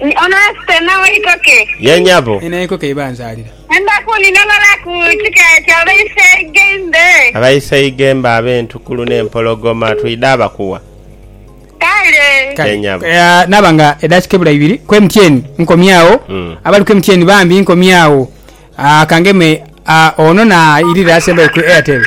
Ni ono asita nawe ikoke. Ye nyabo. Ni naiko keiba anzalira. Endaku ni nobala ku kika kya Baiseigembe. Abaiseigembe abentukulu ne mpologoma twidha bakuwa. Kale. Kale. Ye nyabo. Ea naba nga edakika ebula ibiri ku emtyeni nkomye agho. Abali ku emtyeni bambi nkomye agho. Aa kangeme aa ono na irira asembayo ku Airtel.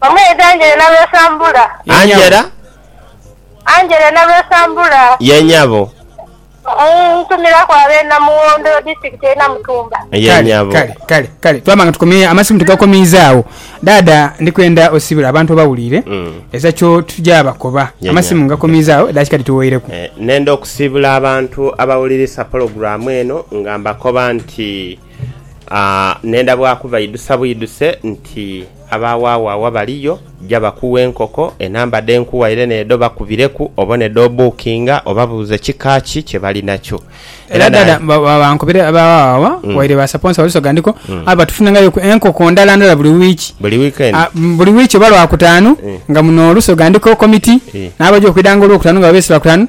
Omwidha Angela Nalwesambula. Ye nyabo. Angela? Angela Nalwesambula. Ye nyabo. Mm, Ntumiraku ab'e Namughondo, Disitulikiti ey'e Namutumba. Ye Kale, nyabo. kale, kale, kale. Twaba nga tukomye, amasimu tugakomiiza agho. Dhaadha, ndi kwenda osibire abantu obawulire Mm. eza kyo tugya bakoba. Ye Amasimu nyabo. ngakomiiza agho edhaakika dhituwoireku. Eh, Nenda okusiibula abantu abawulirisa pologulaamu eno nga mbakoba nti. Ne ndhabwaku baidhusa bwidhuse nti, Abaawaawaawa baliyo, ja bakughe enkoko. Enamba dhe nkughaire n'edho bakubireku obone dh'obuukinga, obabuuze kika ki kye bali nakyo. Era dada bankubire abaawaawaawa waire baasaponsa Walusoga ndiko, aye batufunengaireku enkoko ndala ndala buli wiiki. Buli wiikendi? Buli wiiki oba Lwakutaanu nga muno Lusoga ndiko komiti n'abaja okwidha nga Olwokutaanu nga babeese Lwakutaanu.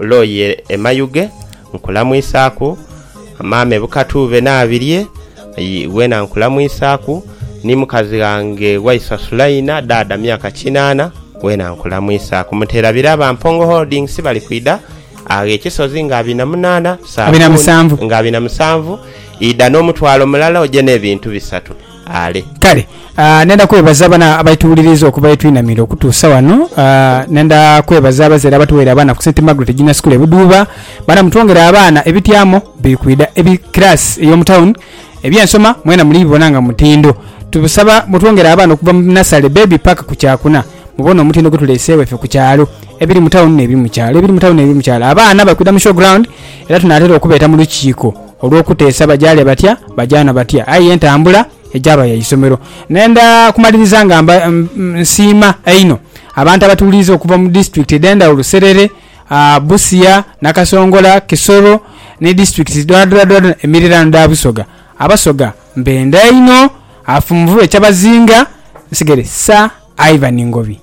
Loye e Mayuge, nkulamwisaaku. Maama e Bukatuube n'abirye, wena nkulamwisaaku. Ni mukazi ghange Waiswa Sulaina, Dhaadha myaka kinaana, wena nkulamwisaaku. Mutera Biraba, Mpongo Holdings, bali kwidha agho e Kisozi nga abina munaana, Saabuni nga abina musanvu, idha n'omutwalo mulala oje n'ebintu bisatu. ale. Kale, nenda kwebaza bano abaituwuliriiza okuva ye twinamira okutuusa wano. Nenda kwebaza abazaire abatuweire abaana ku St. Margaret Junior School e Buduuba. Baana mutwongere abaana, ebityamo biri kwidha, ebi class ey'omu town, eby'ensoma mwena muli bibona nga mutindo. Tubasaba mutwongere abaana okuva mu nasale, baby, paka ku kyakuna, mubone omutindo gwe tuleeseewo ife ku kyalo, ebiri mu town n'ebiri mu kyalo, ebiri mu town n'ebiri mu kyalo. Abaana bali kwidha mu show ground era tunaatera okubeeta mu lukiiko. Olw'okuteesa bajaale batya, bajaana batya, aye entambula egyaba ya isomero. Nenda kumaliriza nga nsiima einho abantu abatuwuliriza okuva mu disitulikiti edh'endhawulo, Serere, Busia, Nakasongola, Kisoro ni disitulikiti dhoadhoadho emiriraano dha Busoga. Abasoga mbenda inho. Afunvube Kyabazinga nsigere Sir Ivan Ngobi.